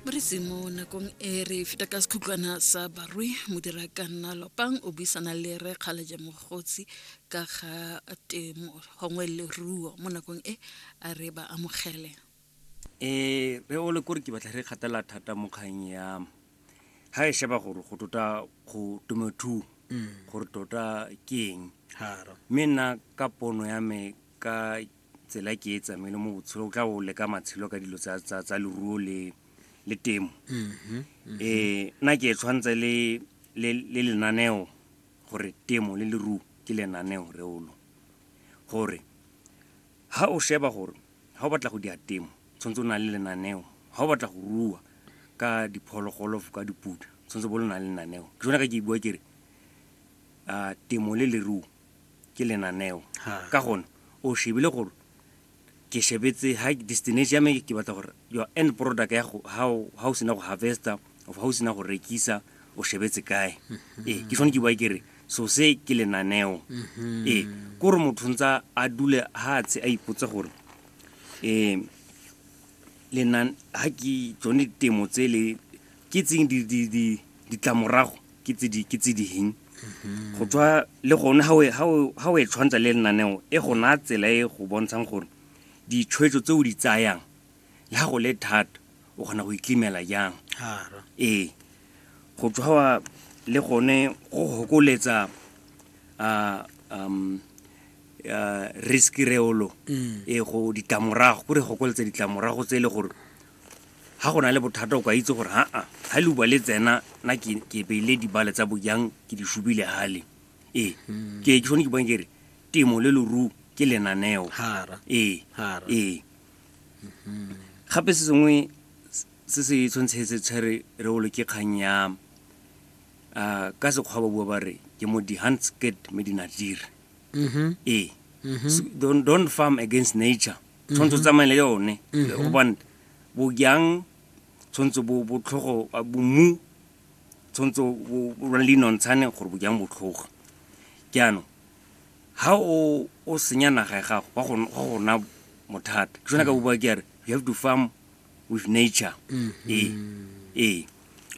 re se mo nakong e re feta ka sekhutlwana sa barui modira ka nna lopang o buisana le re kgaleje mogotsi ka ga temo gongwe leruo mo nakong e a re ba amogele um re ole kore ke batla re kgatela thata mo kgang ya ga e sheba gore go tota go temothuo gore tota ke eng mme nna ka pono ya me ka tsela e ke e tsamaile mo botshelo o tla o leka matshelo ka dilo tsa- tsa tsa leruo le le temo um nna ke e tshwanetse le le le lenaneo gore temo le leruo ke lenaneo reolo gore ha o sheba gore ha o batla go dira temo tshwanetse o na le lenaneo ha o batla go rua ka diphologolo ka diputa tshwanetse bo le na le lenaneo ke jone ka ke bua kere um temo le leruo ke lenaneo Ha. ka gone o shebile gore ke shebetse ha destination ya me ke batla gore your end product ya go ha o- ha o sena go harvesta of ha o sena go rekisa o shebetse kae ee ke tshwane ke bua ke re so se ke lenaneo ee ke gore motho ntsa a dule ha tshe a ipotse gore um lenan ha ke tsone temo tse le ke tseng ditlamorago ke tse ding mm-hmm. go tswa le gone ga o e tshwantsha le lenaneo e go naya tsela e go bontshang gore ditshwetso tse o di tsayang le ga go le thata o kgona go iklimela jang ee go tswa le gone go gokoletsa um risk reolo mm. e go ditlamorago gore gokoletsa ditlamorago tse e le gore ga go na le bothata o ka itse gore aa ga le bua le tsena na ke beile dibale tsa bojang ke di shubile gale ee hmm. ke ke sone ke bang kere temo le loru ke lenaneo ee ee hmm. gape se sengwe se se tshwantshetse tshwere re olo ke kgang ya ah, ka sekgwa ba bua ba re ke mo di-handsket me dinadire mm-hmm. ee mm-hmm. don't farm against nature tshwanetse o tsamaye le yone gobane bojang tshwanetse bo botlhogo a bomu tshwanetse o- o o lwane le dinontshane gore bojang botlhogo jaanong ha o o senya naga ya gago wa go wa go na mothata ke sone ka bua ke re you have to farm with nature mm -hmm. ee ee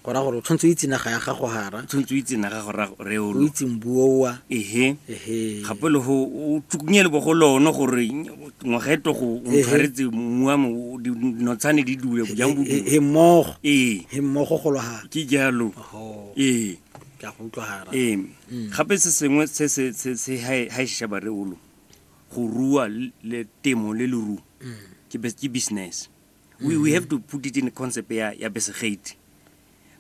go ra gore o tshwanetse o itse naga ya gago gara tshwanetse o itse naga gore re o itse mbuowa ehe ehe gape le go o tsukunye le bogo lone gore ngwaga e togo o ntshwaretse mmu wa mo dinotshane di dule jang bo he mmogo ee he mmogo go lwa ke jalo ee ke a go utlwa gara ee mm. gape se sengwe se se se se ha e shaba re o lo go rua le temo le leruo ke bus- ke business we, we have to put it in concept ya, ya besegate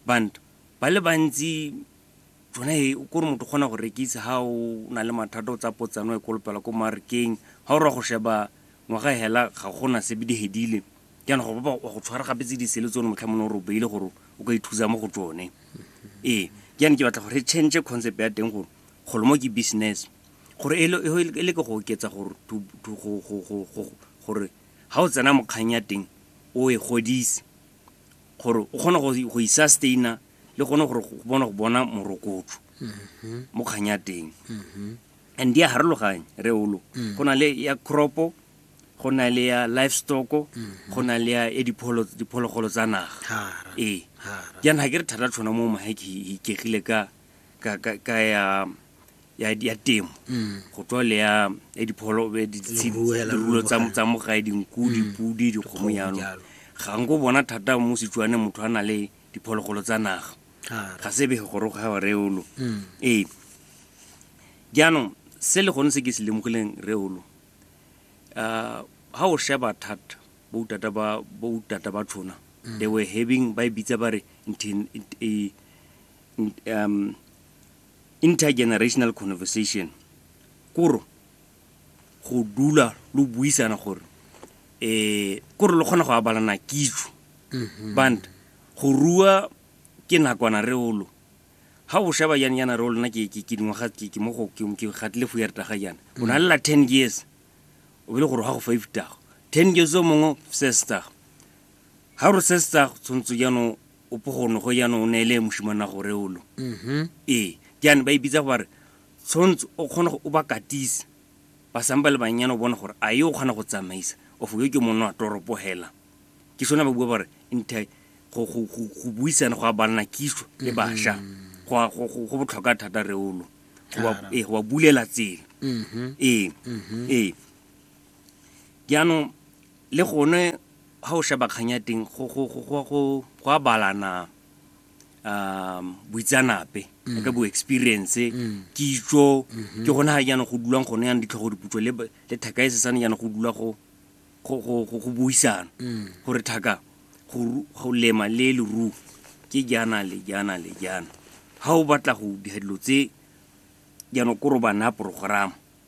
bantu ba le bantsi tsone e kore motho o kgona go rekisa ga o na le mathata o tsa potsano e kolopela ko marekeng ga o ra go sheba ngwaga e hela ga gona sebe di hedile jaana go ba wa go tshwara gape tse disele tsone motlha mone o re o beile gore o ka ithusa mo go tsone ee jaana ke batla gore re change concept ya teng gore golo mo ke business gore e le ke go oketsa gore ga o tsena mo kgang ya teng o e godise gore o kgone go e sustaina le gone gore go bona go bona morokotso mo kgang ya teng and di a harologanye re olo go na le ya cropo go na le ya livestock go na le ya e diphologolo tsa naga ee jaana ga ke re thata tshwana mo mahe ke ikegile ka ya ya, ya temo mm. go tswa le ya ya dipholo dirulo tsa tsa mogae dinku mm. dipudi dikgomo jalo ga nko bona thata mo setswane motho a na le diphologolo tsa naga ga se bege gore ga wa reolo mm. ee jaanong se le gone se ke se lemogileng reolo um ga o sheba thata boutata ba boutata ba tshona they were having ba e bitsa ba re um Intergenerational conversation, kore go dula lo buisana gore um kore lo kgona go abalana kitso mm-hmm. band go rua ke nakwana re olo ga o sheba jane yana re olona ke dingwaga ke gatile fo yareta ga jana o na lela ten years o bele gore ga go five tago ten years o mongwe sestago ga gore sestago tshwanetse jaanong O pogono go jaanong o neele moshimana gore olo. Mm-hmm. Ee, jaane ba e bitsa go ba re tshwanetse o kgone go o ba katise ba sampa le bannyane o bone gore a e o kgona go tsamaisa of yo ke monna wa toropo hela ke sone ba bua ba re nte go buisana go a banna kiso le mm-hmm. bašwa go botlhokwa thata reolo ee go ba bulela tsela mm-hmm. ee mm-hmm. ee jaanong Le gone ga o sheba kgang ya teng go a balana boitseanape ka bo experience, kitso. Ke gone ga jaanong go dulwang gone jaanong ditlhogo diputso le Thaka e sesane jaanong go dula go buisana gore Thaka go lema le leruo ke jaana le jaana le jaana. Ga o batla go dira dilo tse jaanong kore o ba naya progerama.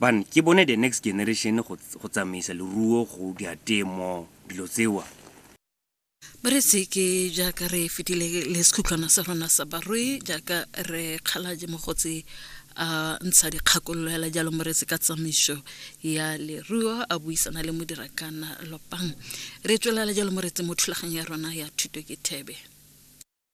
Ban, ke bone the next generation go go tsamaisa leruo go dia temo dilo tsewa. Ba re se ke jaaka re fetile le sekhutlhwana sa rona sa barui jaaka re kgalaje mogotsi a ntsha dikgakololo hela jalo moretsi ka tsamaiso ya leruo a buisana le modirakana lopang re tswelela jalo moretsi mo thulaganyo ya rona ya thuto ke thebe